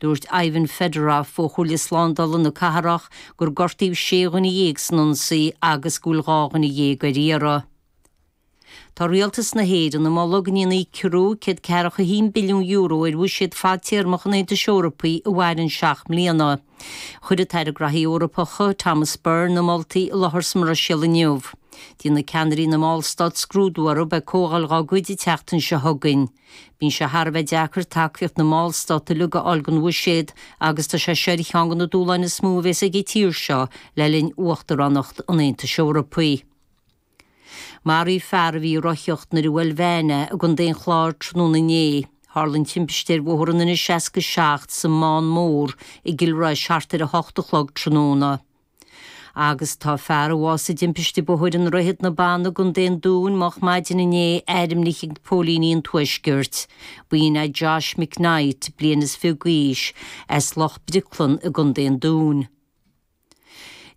Dúirt Ivan Fedorov, ó chomhairle slándála na cathrach, gur gortaíodh sé dhuine dhéag san ionsaí agus go bhfuil dhá dhuine dhéag ar iarraidh. Tá Rialtas na hÉireann ag moladh go ndéanfaí ciorrú €141 billiún ar bhuiséad fadtéarmach an Aontais Eorpaigh a mhaireann seacht mbliana. Chuir an tAire Graithí Eorpacha, Thomas Byrne, na moltaí i láthair sa mBruiséil inniu. Déanfaidh ceannairí na mballstát scrúdú orthu ag comhdháil dá gcuid an tseachtain seo chugainn. Bíonn sé thar a bheith deacair tacaíocht na mballstát uilig a fháil don bhuiséad agus tá sé seo ar cheann de na dúshláin is mó a bhéas ag an tír seo le linn uachtaránacht an Aontais Eorpaigh. Maraíodh fear a bhí ag rothaíocht nuair a bhuail veain é i gContae an Chláir tráthnóna inné. Tharla an timpiste ar bhóthar an N67 sa mBán Mór i gCill Rois thart ar a hocht a chlog tráthnóna. Agus tá fear a bhásaigh i dtimpiste bóthair i nDroichead na Banna i gContae an Dúin moch maidin inné airmnithe ag póilíní an Tuaiscirt. B'in é Josh McKnight, bliain is fiche d'aois, as Loch Bricleann i gContae an Dúin.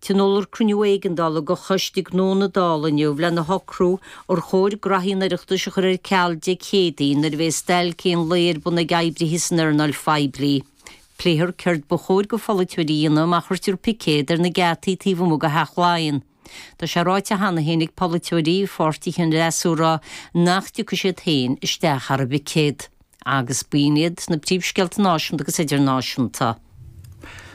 Tionóladh cruinniú éigeandála de Choiste Gnó na Dála inniu lena shocrú ar chóir graithí an Oireachtais a chur ar ceal Dé Céadaoin nuair a bheidh stailc aon lae ar bun ag oibrithe san earnáil phoiblí. Pléifear céard ba chóir do pholaiteoirí a dhéanamh má chuirtear picéad ar na geataí taobh amuigh de Theach Laighean. Tá sé ráite cheana féin ag polaiteoirí pháirtithe an fhreasúra nach dtiocfaidh siad féin isteach thar an bpicéad. Agus b'in iad na príomhscéalta náisiúnta agus idirnáisiúnta.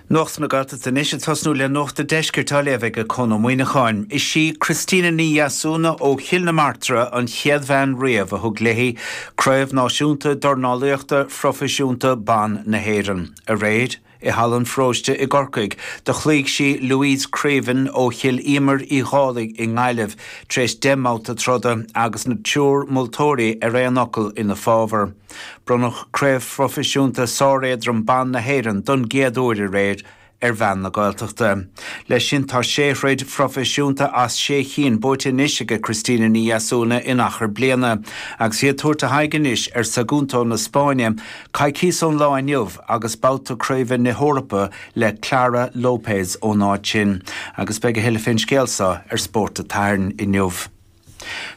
Nuacht na Gaeltachta anois, ag tosnú le Nuacht a' Deiscirt á léamh ag Conn Ó Muíneacháin. Is í Christina Ní Dheasúna ó Chill na Martra an chéad bhean riamh a thug léi Craobh Náisiúnta Dornálaíochta Phroifisiúnta Ban na hÉireann. Aréir, i Halla an Pharóiste i gCorcaigh, do chloígh sí Louise Creaven ó Chill Íomair Uí Dhálaigh i nGaillimh, tar éis deich mbabhta troda, agus an triúr moltóirí ar aon fhocal ina fábhar. Bronnadh Craobh Phroifisiúnta Sáréadrom Ban na hÉireann don gcéad uair aréir ar bhean na Gaeltachta. Leis sin tá sé throid phroifisiúnta as sé chinn buaite anois aige Christina Ní Dheasúna in achar bliana agus í ag tabhairt a haghaidh anois ar Sagunto na Spáinne coicíos ón lá inniu agus babhta craoibhe na hEorpa le Clara Lopez ón áit sin agus beidh a thuilleadh fén scéal seo ar Spórt an tSathairn inniu.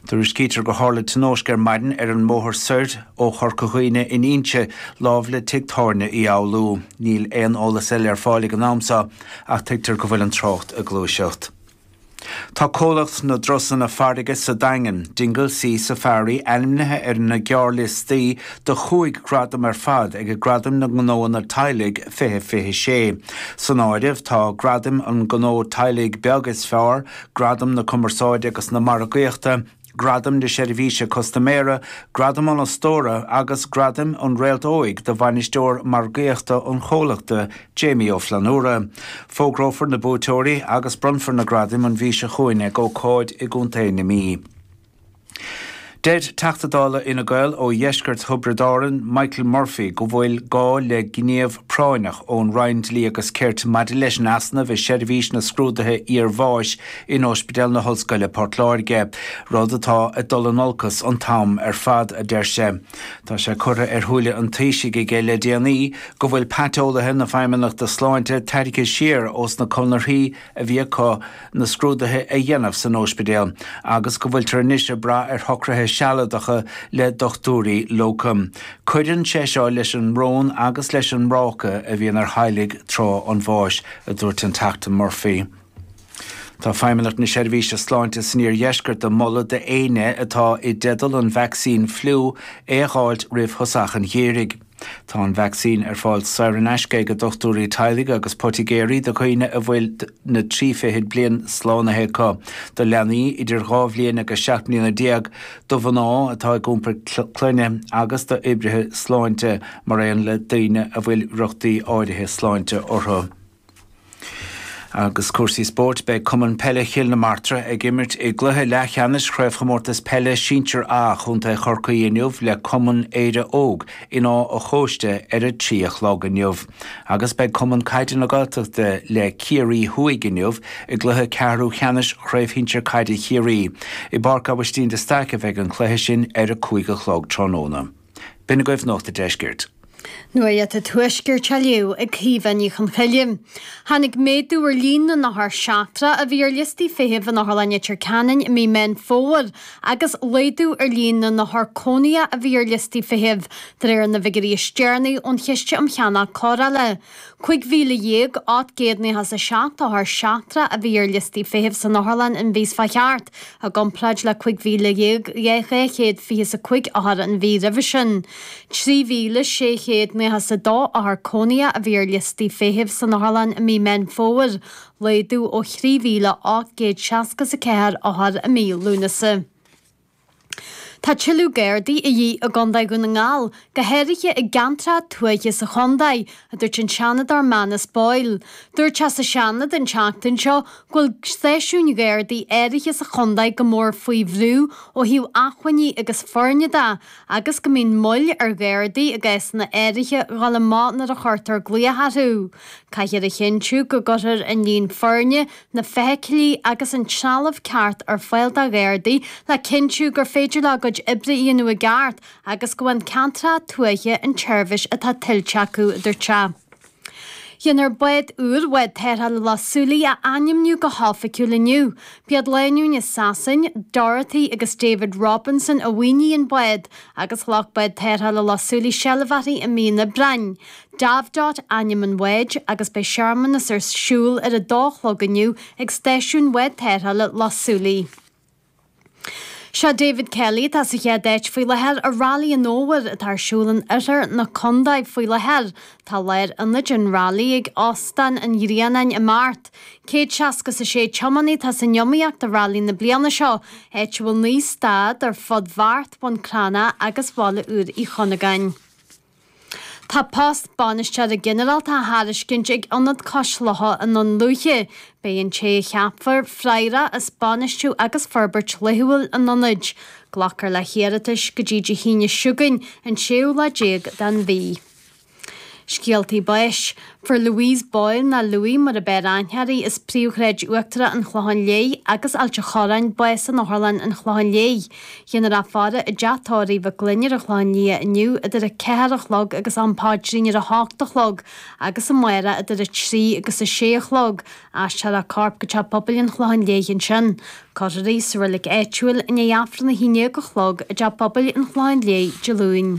Tuairiscítear gur tharla tionóisc ar maidin ar an mbóthar soir ó Chorca Dhuibhne in Inse, lámh le tigh tábhairne Uí Fhoghlú. Níl aon eolas eile ar fáil ag an am seo ach tuigtear go bhfuil an trácht ag gluaiseacht. Tá comhlacht na dtrusanna farraige sa Daingean, Dingle Sea Safari, ainmnithe ar na gearrliostaí do chúig ghradam ar fad aige Gradaim na nGnóanna Teaghlaigh 2026. San áireamh tá Gradam an Ghnó Teaghlaigh Beag is Fearr, Gradam na Cumarsáide agus na Margaíochta, Gradam na Seirbhíse Custaiméara, Gradam an Fhostóra agus Gradam an Réalt Óig do Bhainisteoir Margaíochta an chomhlachta, Jamie Ó Flannúra. Fógrófar na buaiteoirí agus bronnfar na gradaim an mhí seo chugainn ag ócáid i gContae na Mí. Deir Teachta Dála Fhine Gael ó dheisceart Thiobraid Árann, Michael Murphy go bhfuil gá le gníomh práinneach ón Roinn Dlí agus Cirt maidir leis an easnamh i seirbhís na scrúduithe iarbháis in Óispidéal na hOllscoile Port Láirge, rud atá ag dul in olcas an t-am ar fad, a deir sé. Tá sé curtha ar shúile an Taoisigh aige le déanaí go bhfuil paiteolaithe na Feidhmeannachta Sláinte tairgthe siar ós na conarthaí, a bhí acu na scrúduithe a dhéanamh san óispidéal agus go bhfuiltear anois ag brath ar shocruithe sealadacha le dochtúirí locum. Cuireann sé seo leis an mbrón agus leis an mbráca a bhíonn ar theaghlaigh tráth an bháis, a dúirt an Teachta Murphy. Tá Feidhmeannacht na Seirbhíse Sláinte san Iardheisceart ag moladh do éinne atá i dteideal an vacsaín fliú é a dh'fháilt roimh thosach an gheimhridh. Tá an vacsaín ar fáil saor in aisce ag dochtúirí teaghlaigh agus poitigéirí do dhaoine a bhfuil na trí fichid bliain slánaithe acu, do leanaí idir dhá bhliain agus seacht mbliana déag, do mhná atá ag iompar clainne agus d'oibrithe sláinte, mar aon le daoine a bhfuil riochtaí áirithe sláinte orthu. Agus cúrsaí spóirt, beidh Cumann Peile Chill na Martra ag imirt i gcluiche leathcheannais Chraobhchomórtas Peile Sinsear A Chontae Chorcaí inniu le Cumann Éire Óg in Áth a' Chóiste ar a trí a chlog inniu agus beidh Cumann Caide na Gaeltachta le Ciarraí Thuaidh inniu i gcluiche ceathrú cheannais Chraobh Shinsear Caide Chiarraí. I bPáirc Aibhistín de Staic a bheidh an cluiche sin ar a cúig a chlog tráthnóna. B'in agaibh Nuacht a' Deiscirt. Nuacht a' Tuaiscirt á léamh ag Caoimhe Ní Chonchoille. Tháinig méadú ar líon na n-othar seachtrach a bhí ar liostaí feithimh in Otharlann Leitir Ceanainn i mí Meán Fómhair agus laghdú ar líon na n-othar cónaithe a bhí ar liostaí feithimh, de réir na bhfigiúirí is deireanaí ón Chiste um Cheannach Cóireála. Cúig mhíle dhéag, ocht gcéad nócha is a seacht othar seachtrach a bhí ar liostaí feithimh san Otharlann an mhí seo chuaigh thart, i gcomparáid le cúig mhíle dhéag dhá chéad fiche is a cúig othar an mhí roimhe sin. Trí mhíle sé chéad nócha is a dó othar cónaithe a bhí ar liostaí feithimh san Otharlann i mí Meán Fómhair, laghdú ó thrí mhíle ocht gcéad seasca is a ceathair othar i mí Lúnasa. Tá tuilleadh Gardaí de dhíth i gCondae Dhún na nGall, go háirithe i gceantracha tuaithe sa chondae, a dúirt an Seanadóir Manus Boyle. Dúirt sé sa Seanad an tseachtain seo go bhfuil stáisiúin Ghardaí áirithe sa chondae go mór faoi bhrú ó thaobh achmhainní agus foirne de agus go mbíonn moill ar Ghardaí i gcásanna áirithe dhul amach nuair a chuirtear glaoch orthu. Caithfear a chinntiú go gcuirtear an líon foirne na feithiclí agus an trealamh ceart ar fáil do Ghardaí le cinntiú gur féidir leo a gcuid oibre a dhéanamh i gceart agus go bhfaigheann ceantracha tuaithe an tseirbhís atá tuillte acu, a dúirt sé. Dhéanfar bád úr Bhád Tarrthála Loch Súilí a ainmniú go hoifigiúil inniu. B'iad lánúin as Sasain, Dorothy agus David Robinson, a mhaoinigh an bád agus ghlac Bád Tarrthála Loch Súilí seilbh uirthi i mí an Aibreáin. Davdot ainm an bháid agus beidh searmanas ar siúl ar a dó a chlog inniu ag stáisiún Bhád Tarrthála Loch Súilí. Sé David Kelly atá sa chéad áit faoi láthair i Railí an Fhómhair atá ar siúl in oirthear na condae faoi láthair. Tá lárionad an railí ag Óstán an Ghrianáin i mBeart. Céad seasca is a sé tiománaí atá san iomaíocht i railí na bliana seo, áit a bhfuil naoi stad ar fud Bheart, Bhun Cranncha agus Bhaile Úr Uí Chonnagáin. Tá post Bainisteora Ginearálta á thairiscint ag Ionad Cois Locha i nDún Lúiche. Beidh an té a cheapfar freagrach as bainistiú agus forbairt laethúil an Ionaid. Glacfar le hiarratais go dtí Dé hAoine seo chugainn, an séú lá déag den mhí. Scéaltaí Báis. Fuair Louise Boyle, nó Lou mar ab fhearr aithne uirthi, as príomhshráid uachtarach an Chlocháin Léith agus Ailt a' Chorráin, bás in Otharlann an Chlocháin Léith. Dhéanfar í a fhaire i dteach tórraimh Mhic Fhloinn ar an Chlochán Liath inniu idir a ceathair a chlog agus an Paidrín ar a hocht a chlog agus amárach idir a trí agus a sé a chlog. Aistreofar a corp go teach pobail an Chlocháin Léith ansin. Cuirfear í sa reilig áitiúil i ndiaidh Aifreann a haon dhéag a chlog i dteach pobail an Chlocháin Léith Dé Luain.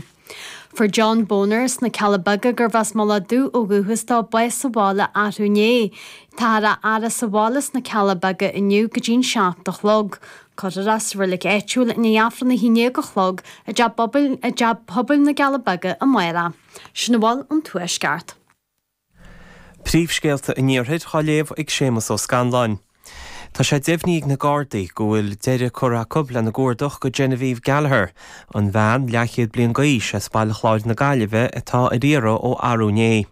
Fuair John Boner as na Cealla Beaga gurbh as Mullach Dubh ó dhúchas dó, bás sa bhaile athrú inné. Táthar á fhaire sa bhaile sna Cealla Beaga inniu go dtí an seacht a chlog. Cuirfear é sa reilig áitiúil i ndiaidh Aifreann a haon déag a chlog i dteach pobail na gCealla Beaga amárach. Sin a bhfuil ón Tuaisceart. Príomhscéalta an Iarthair á léamh ag Séamus Ó Scanláin. Tá sé deimhnithe ag na Gardaí go bhfuil deireadh curtha acu lena gcuardach do Genevieve Gallagher, an bhean leathchéad bliain d'aois as Baile Chláir na Gaillimhe atá ar iarraidh ó arú inné.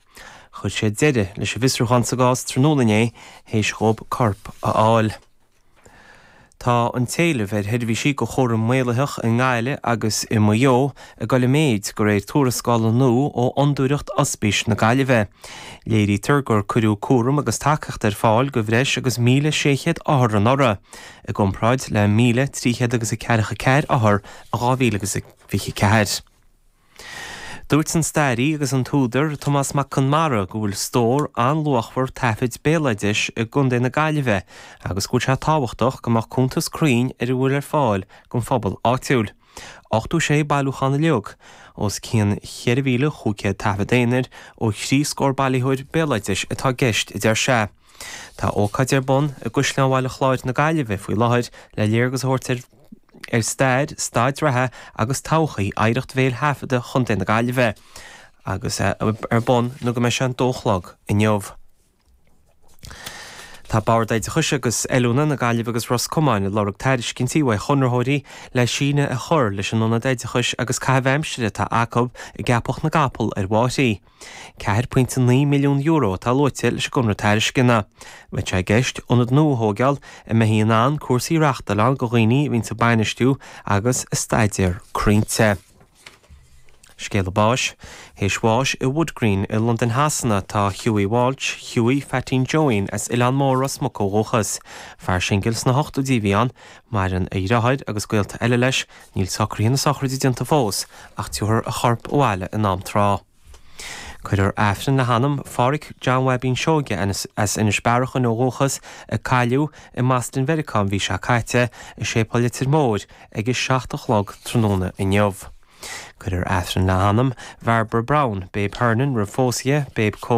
Chuir siad deireadh leis an bhfiosrúchán sa gcás tráthnóna inné théis dhóib corp a fháil. Tá an t-éileamh ar sheirbhísí do chúram maolaitheach i nGaillimh agus i Maigh Eo ag dul i méid, de réir tuarascála nua ó Fhondúireacht Ospís na Gaillimhe. Léirítear gur cuireadh cúram agus tacaíocht ar fáil do bhreis agus 1,600 othar anuraidh, i gcomparáid le 1,300 agus a ceathracha ceathair othar in 2024. Dúirt an stairí agus an t-údar Tomás Mac Conmara go bhfuil stór an-luachmhar taifid béaloidis i gContae na Gaillimhe agus go bhfuil sé tábhachtach go mbeadh cuntas cruinn ar a bhfuil ar fáil don phobal áitiúil. 86 bailiúchán uilig, os cionn 4,500 taifead aonair ó thrí scór bailitheoir béaloidis atá i gceist, a deir sé. Tá ócáid ar bun i gCaisleán Bhaile Chláir na Gaillimhe faoi láthair le léargas a thabhairt ar stair, staid reatha agus todhchaí oidhreacht bhéil thaifeadta Chontae na Gaillimhe agus é ar bun nó go mbeidh sé an dó a chlog inniu. Tá Bord Oideachais agus Oiliúna na Gaillimhe agus Ros Comáin ag lorg tairiscintí uaidh chonraitheoirí le síneadh a chur leis an ionad oideachais agus caithimh aimsire atá acu i gCeapach na gCapall ar Bhóithrín €4.9 milliún atá luaite leis an gconradh tairisceana. Beidh sé i gceist ionad nua a thóigeáil a mbeidh in ann cúrsaí a reachtáil ann go dhaoine a bhíonns ag bainistiú agus ag staidéar croinnte. Scéala báis, Théis bháis i Wood Green i Londain Shasana tá Hughie Walsh, Hughie Pheaitín Joeín, as Oileán Mór Ros Muc ó dhúchas. Fear singil sna hochtóidí a bhí ann. Maireann a dhriotháir agus gaolta eile leis. Níl socruithe na sochraide déanta fós ach tabharfar a chorp abhaile in am tráth. Cuirfear Aifreann le hanam Pháraic John Bhaibín Seoige as Inis Bearachain ó dhúchas a cailleadh i mBaston Mheiriceá an mhí seo caite i Séipéal Leitir Móir ag a seacht a chlog tráthnóna inniu. Cuirfear Aifreann le hanam Bhairbre Brown, Babe Hernon roimh phósadh Babe Cole,